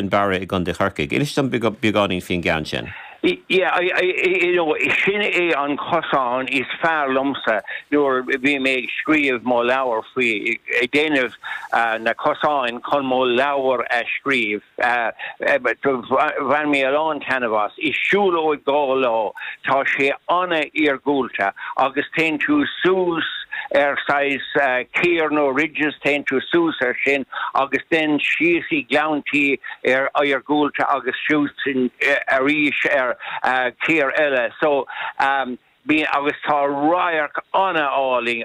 in Barra i gContae Chorcaigh. Inis dom beagáinín faoin gceann sin. Yeah, you know, sin é an cosán is fearr liomsa nuair a bhí mé ag scríobh mo leabhair faoi, ag déanamh na cosáin chun mo leabhar a scríobh. Bhain mé a lán taitneamh as. Is siúlóid dhá lá Tá sé an-iargúlta agus téann tú suas ar saghas cíor nó ridges, téann tú suas ar sin agus then síos i gleannta iargúlta agus suas arís ar cíor eile so agus tá radharc an-álainn,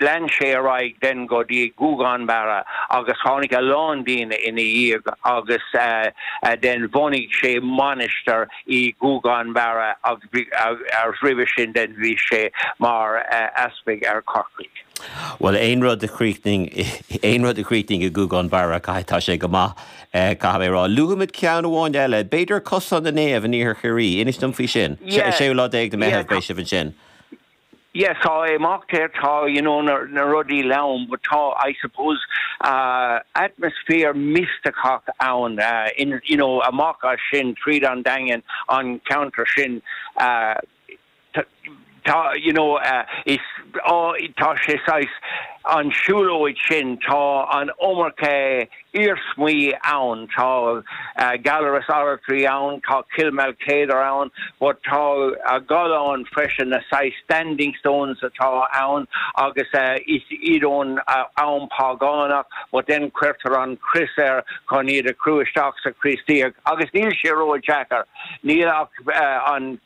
Lean sé ar aghaidh then go dtí Guagán Barra agus tháinig a lán daoine ina dhiaidh agus then bhunaigh sé mainistir i Guagán Barra agus roimhe sin then bhí sé mar easpag ar Corcaigh. Bhuel aon rud a chríochnaíonn, aon rud a chríochnaíonn i Guagán Barra caithfidh, tá sé go maith caithfidh mé a rá. Luafaimid ceann amháin eile, b'fhéidir Cosán na Naomh in Iarthar Chiarraí, inis dom faoi sin. An séú lá déag de Mheitheamh beidh sibh ansin. yeah tá imeacht air tá you know na na rudaí leann but tá I suppose atmosphere misteach ann in you know amach as sin tríd an daingean an ceantar sin tá you know is á tá sé saghas an siúlóid sin tá an iomarca iarsmaí ann. Tá Gallarus Oratory ann, tá Cill Maoilchéadair ann, but tá galláin freisin, na saghas standing stones atá ann agus is iad ón am págánach but then cuirtear an chrois air chun iad a chur isteach sa Chríostaíocht agus níl sé ródheacair, níl ach an.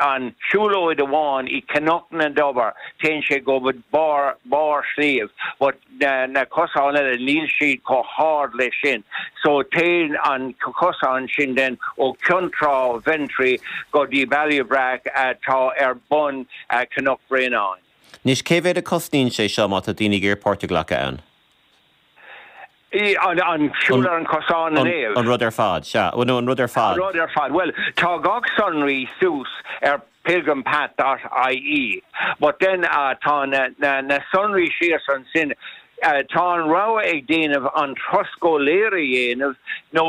an siúlóid amháin i Cnoc na dTobar téann sé go barr barr sliabh but na cosáin eile níl siad chomh hard leis sin so téann an cosán sin then ó Ceann Trá Ventry go dtí Baile Breac atá ar bun Cnoc Bhréanainn. Anois cé mhéad a cosnaíonn sé seo má tá daoine ag iarraidh páirt a ghlacadh ann? i. an siúl ar an chosán in Éirinn. an rud ar fad, sea. Bhuel, nó an rud ar fad. rud ar fad. Bhuel, tá gach sonraí suas ar pilgrimpath dot ie but then tá na sonraí síos ansin. Tá an rogha ag daoine an turas go léir a dhéanamh nó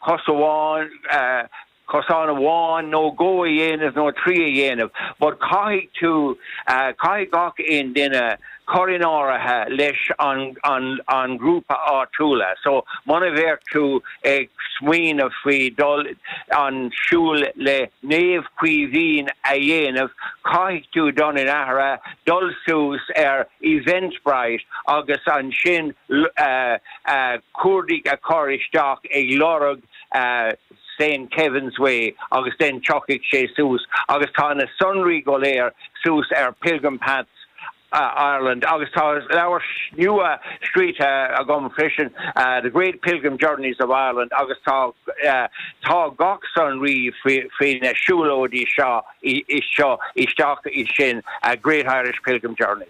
cosán amháin, cosán amháin nó dhó a dhéanamh nó trí a dhéanamh but caithfidh tú, caithfidh gach aon duine cur in áirithe leis an, an, an ghrúpa áitiúla. So, muna bheadh tú ag smaoineamh faoi dul an siúl le Naomh Caoimhín a dhéanamh, caithfidh tú dul in áirithe, dul suas ar Eventbrite agus ansin cuardaigh a chur isteach ag lorg, St. Kevin's Way agus then tiocfaidh sé suas agus tá na sonraí go léir suas ar Pilgrim Paths Ireland agus tá leabhar nua scríte agam freisin The Great Pilgrim Journeys of Ireland agus tá tá gach sonraí faoi na siúlóidí seo isteach i sin Great Irish Pilgrim Journeys.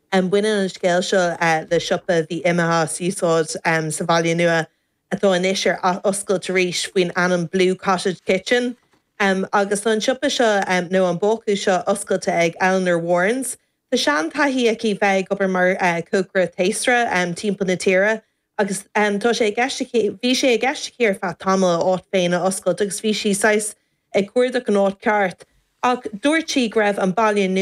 Baineann an scéal seo le siopa a bhí imithe as úsáid sa Bhaile Nua atá anois ar oscailt arís faoin ainm Blue Cottage Kitchen agus tá an siopa seo, nó an bácús seo oscailte ag Eleanor Warrens. Tá sean taithí aici bheith ag obair mar cócaire taosra timpeall na tíre agus tá sé i gceist aici, bhí sé i gceist aici ar feadh tamaill a áit féin a oscailt agus bhí sí saghas ag cuardach an áit ceart ach dúirt sí go raibh an Baile Nua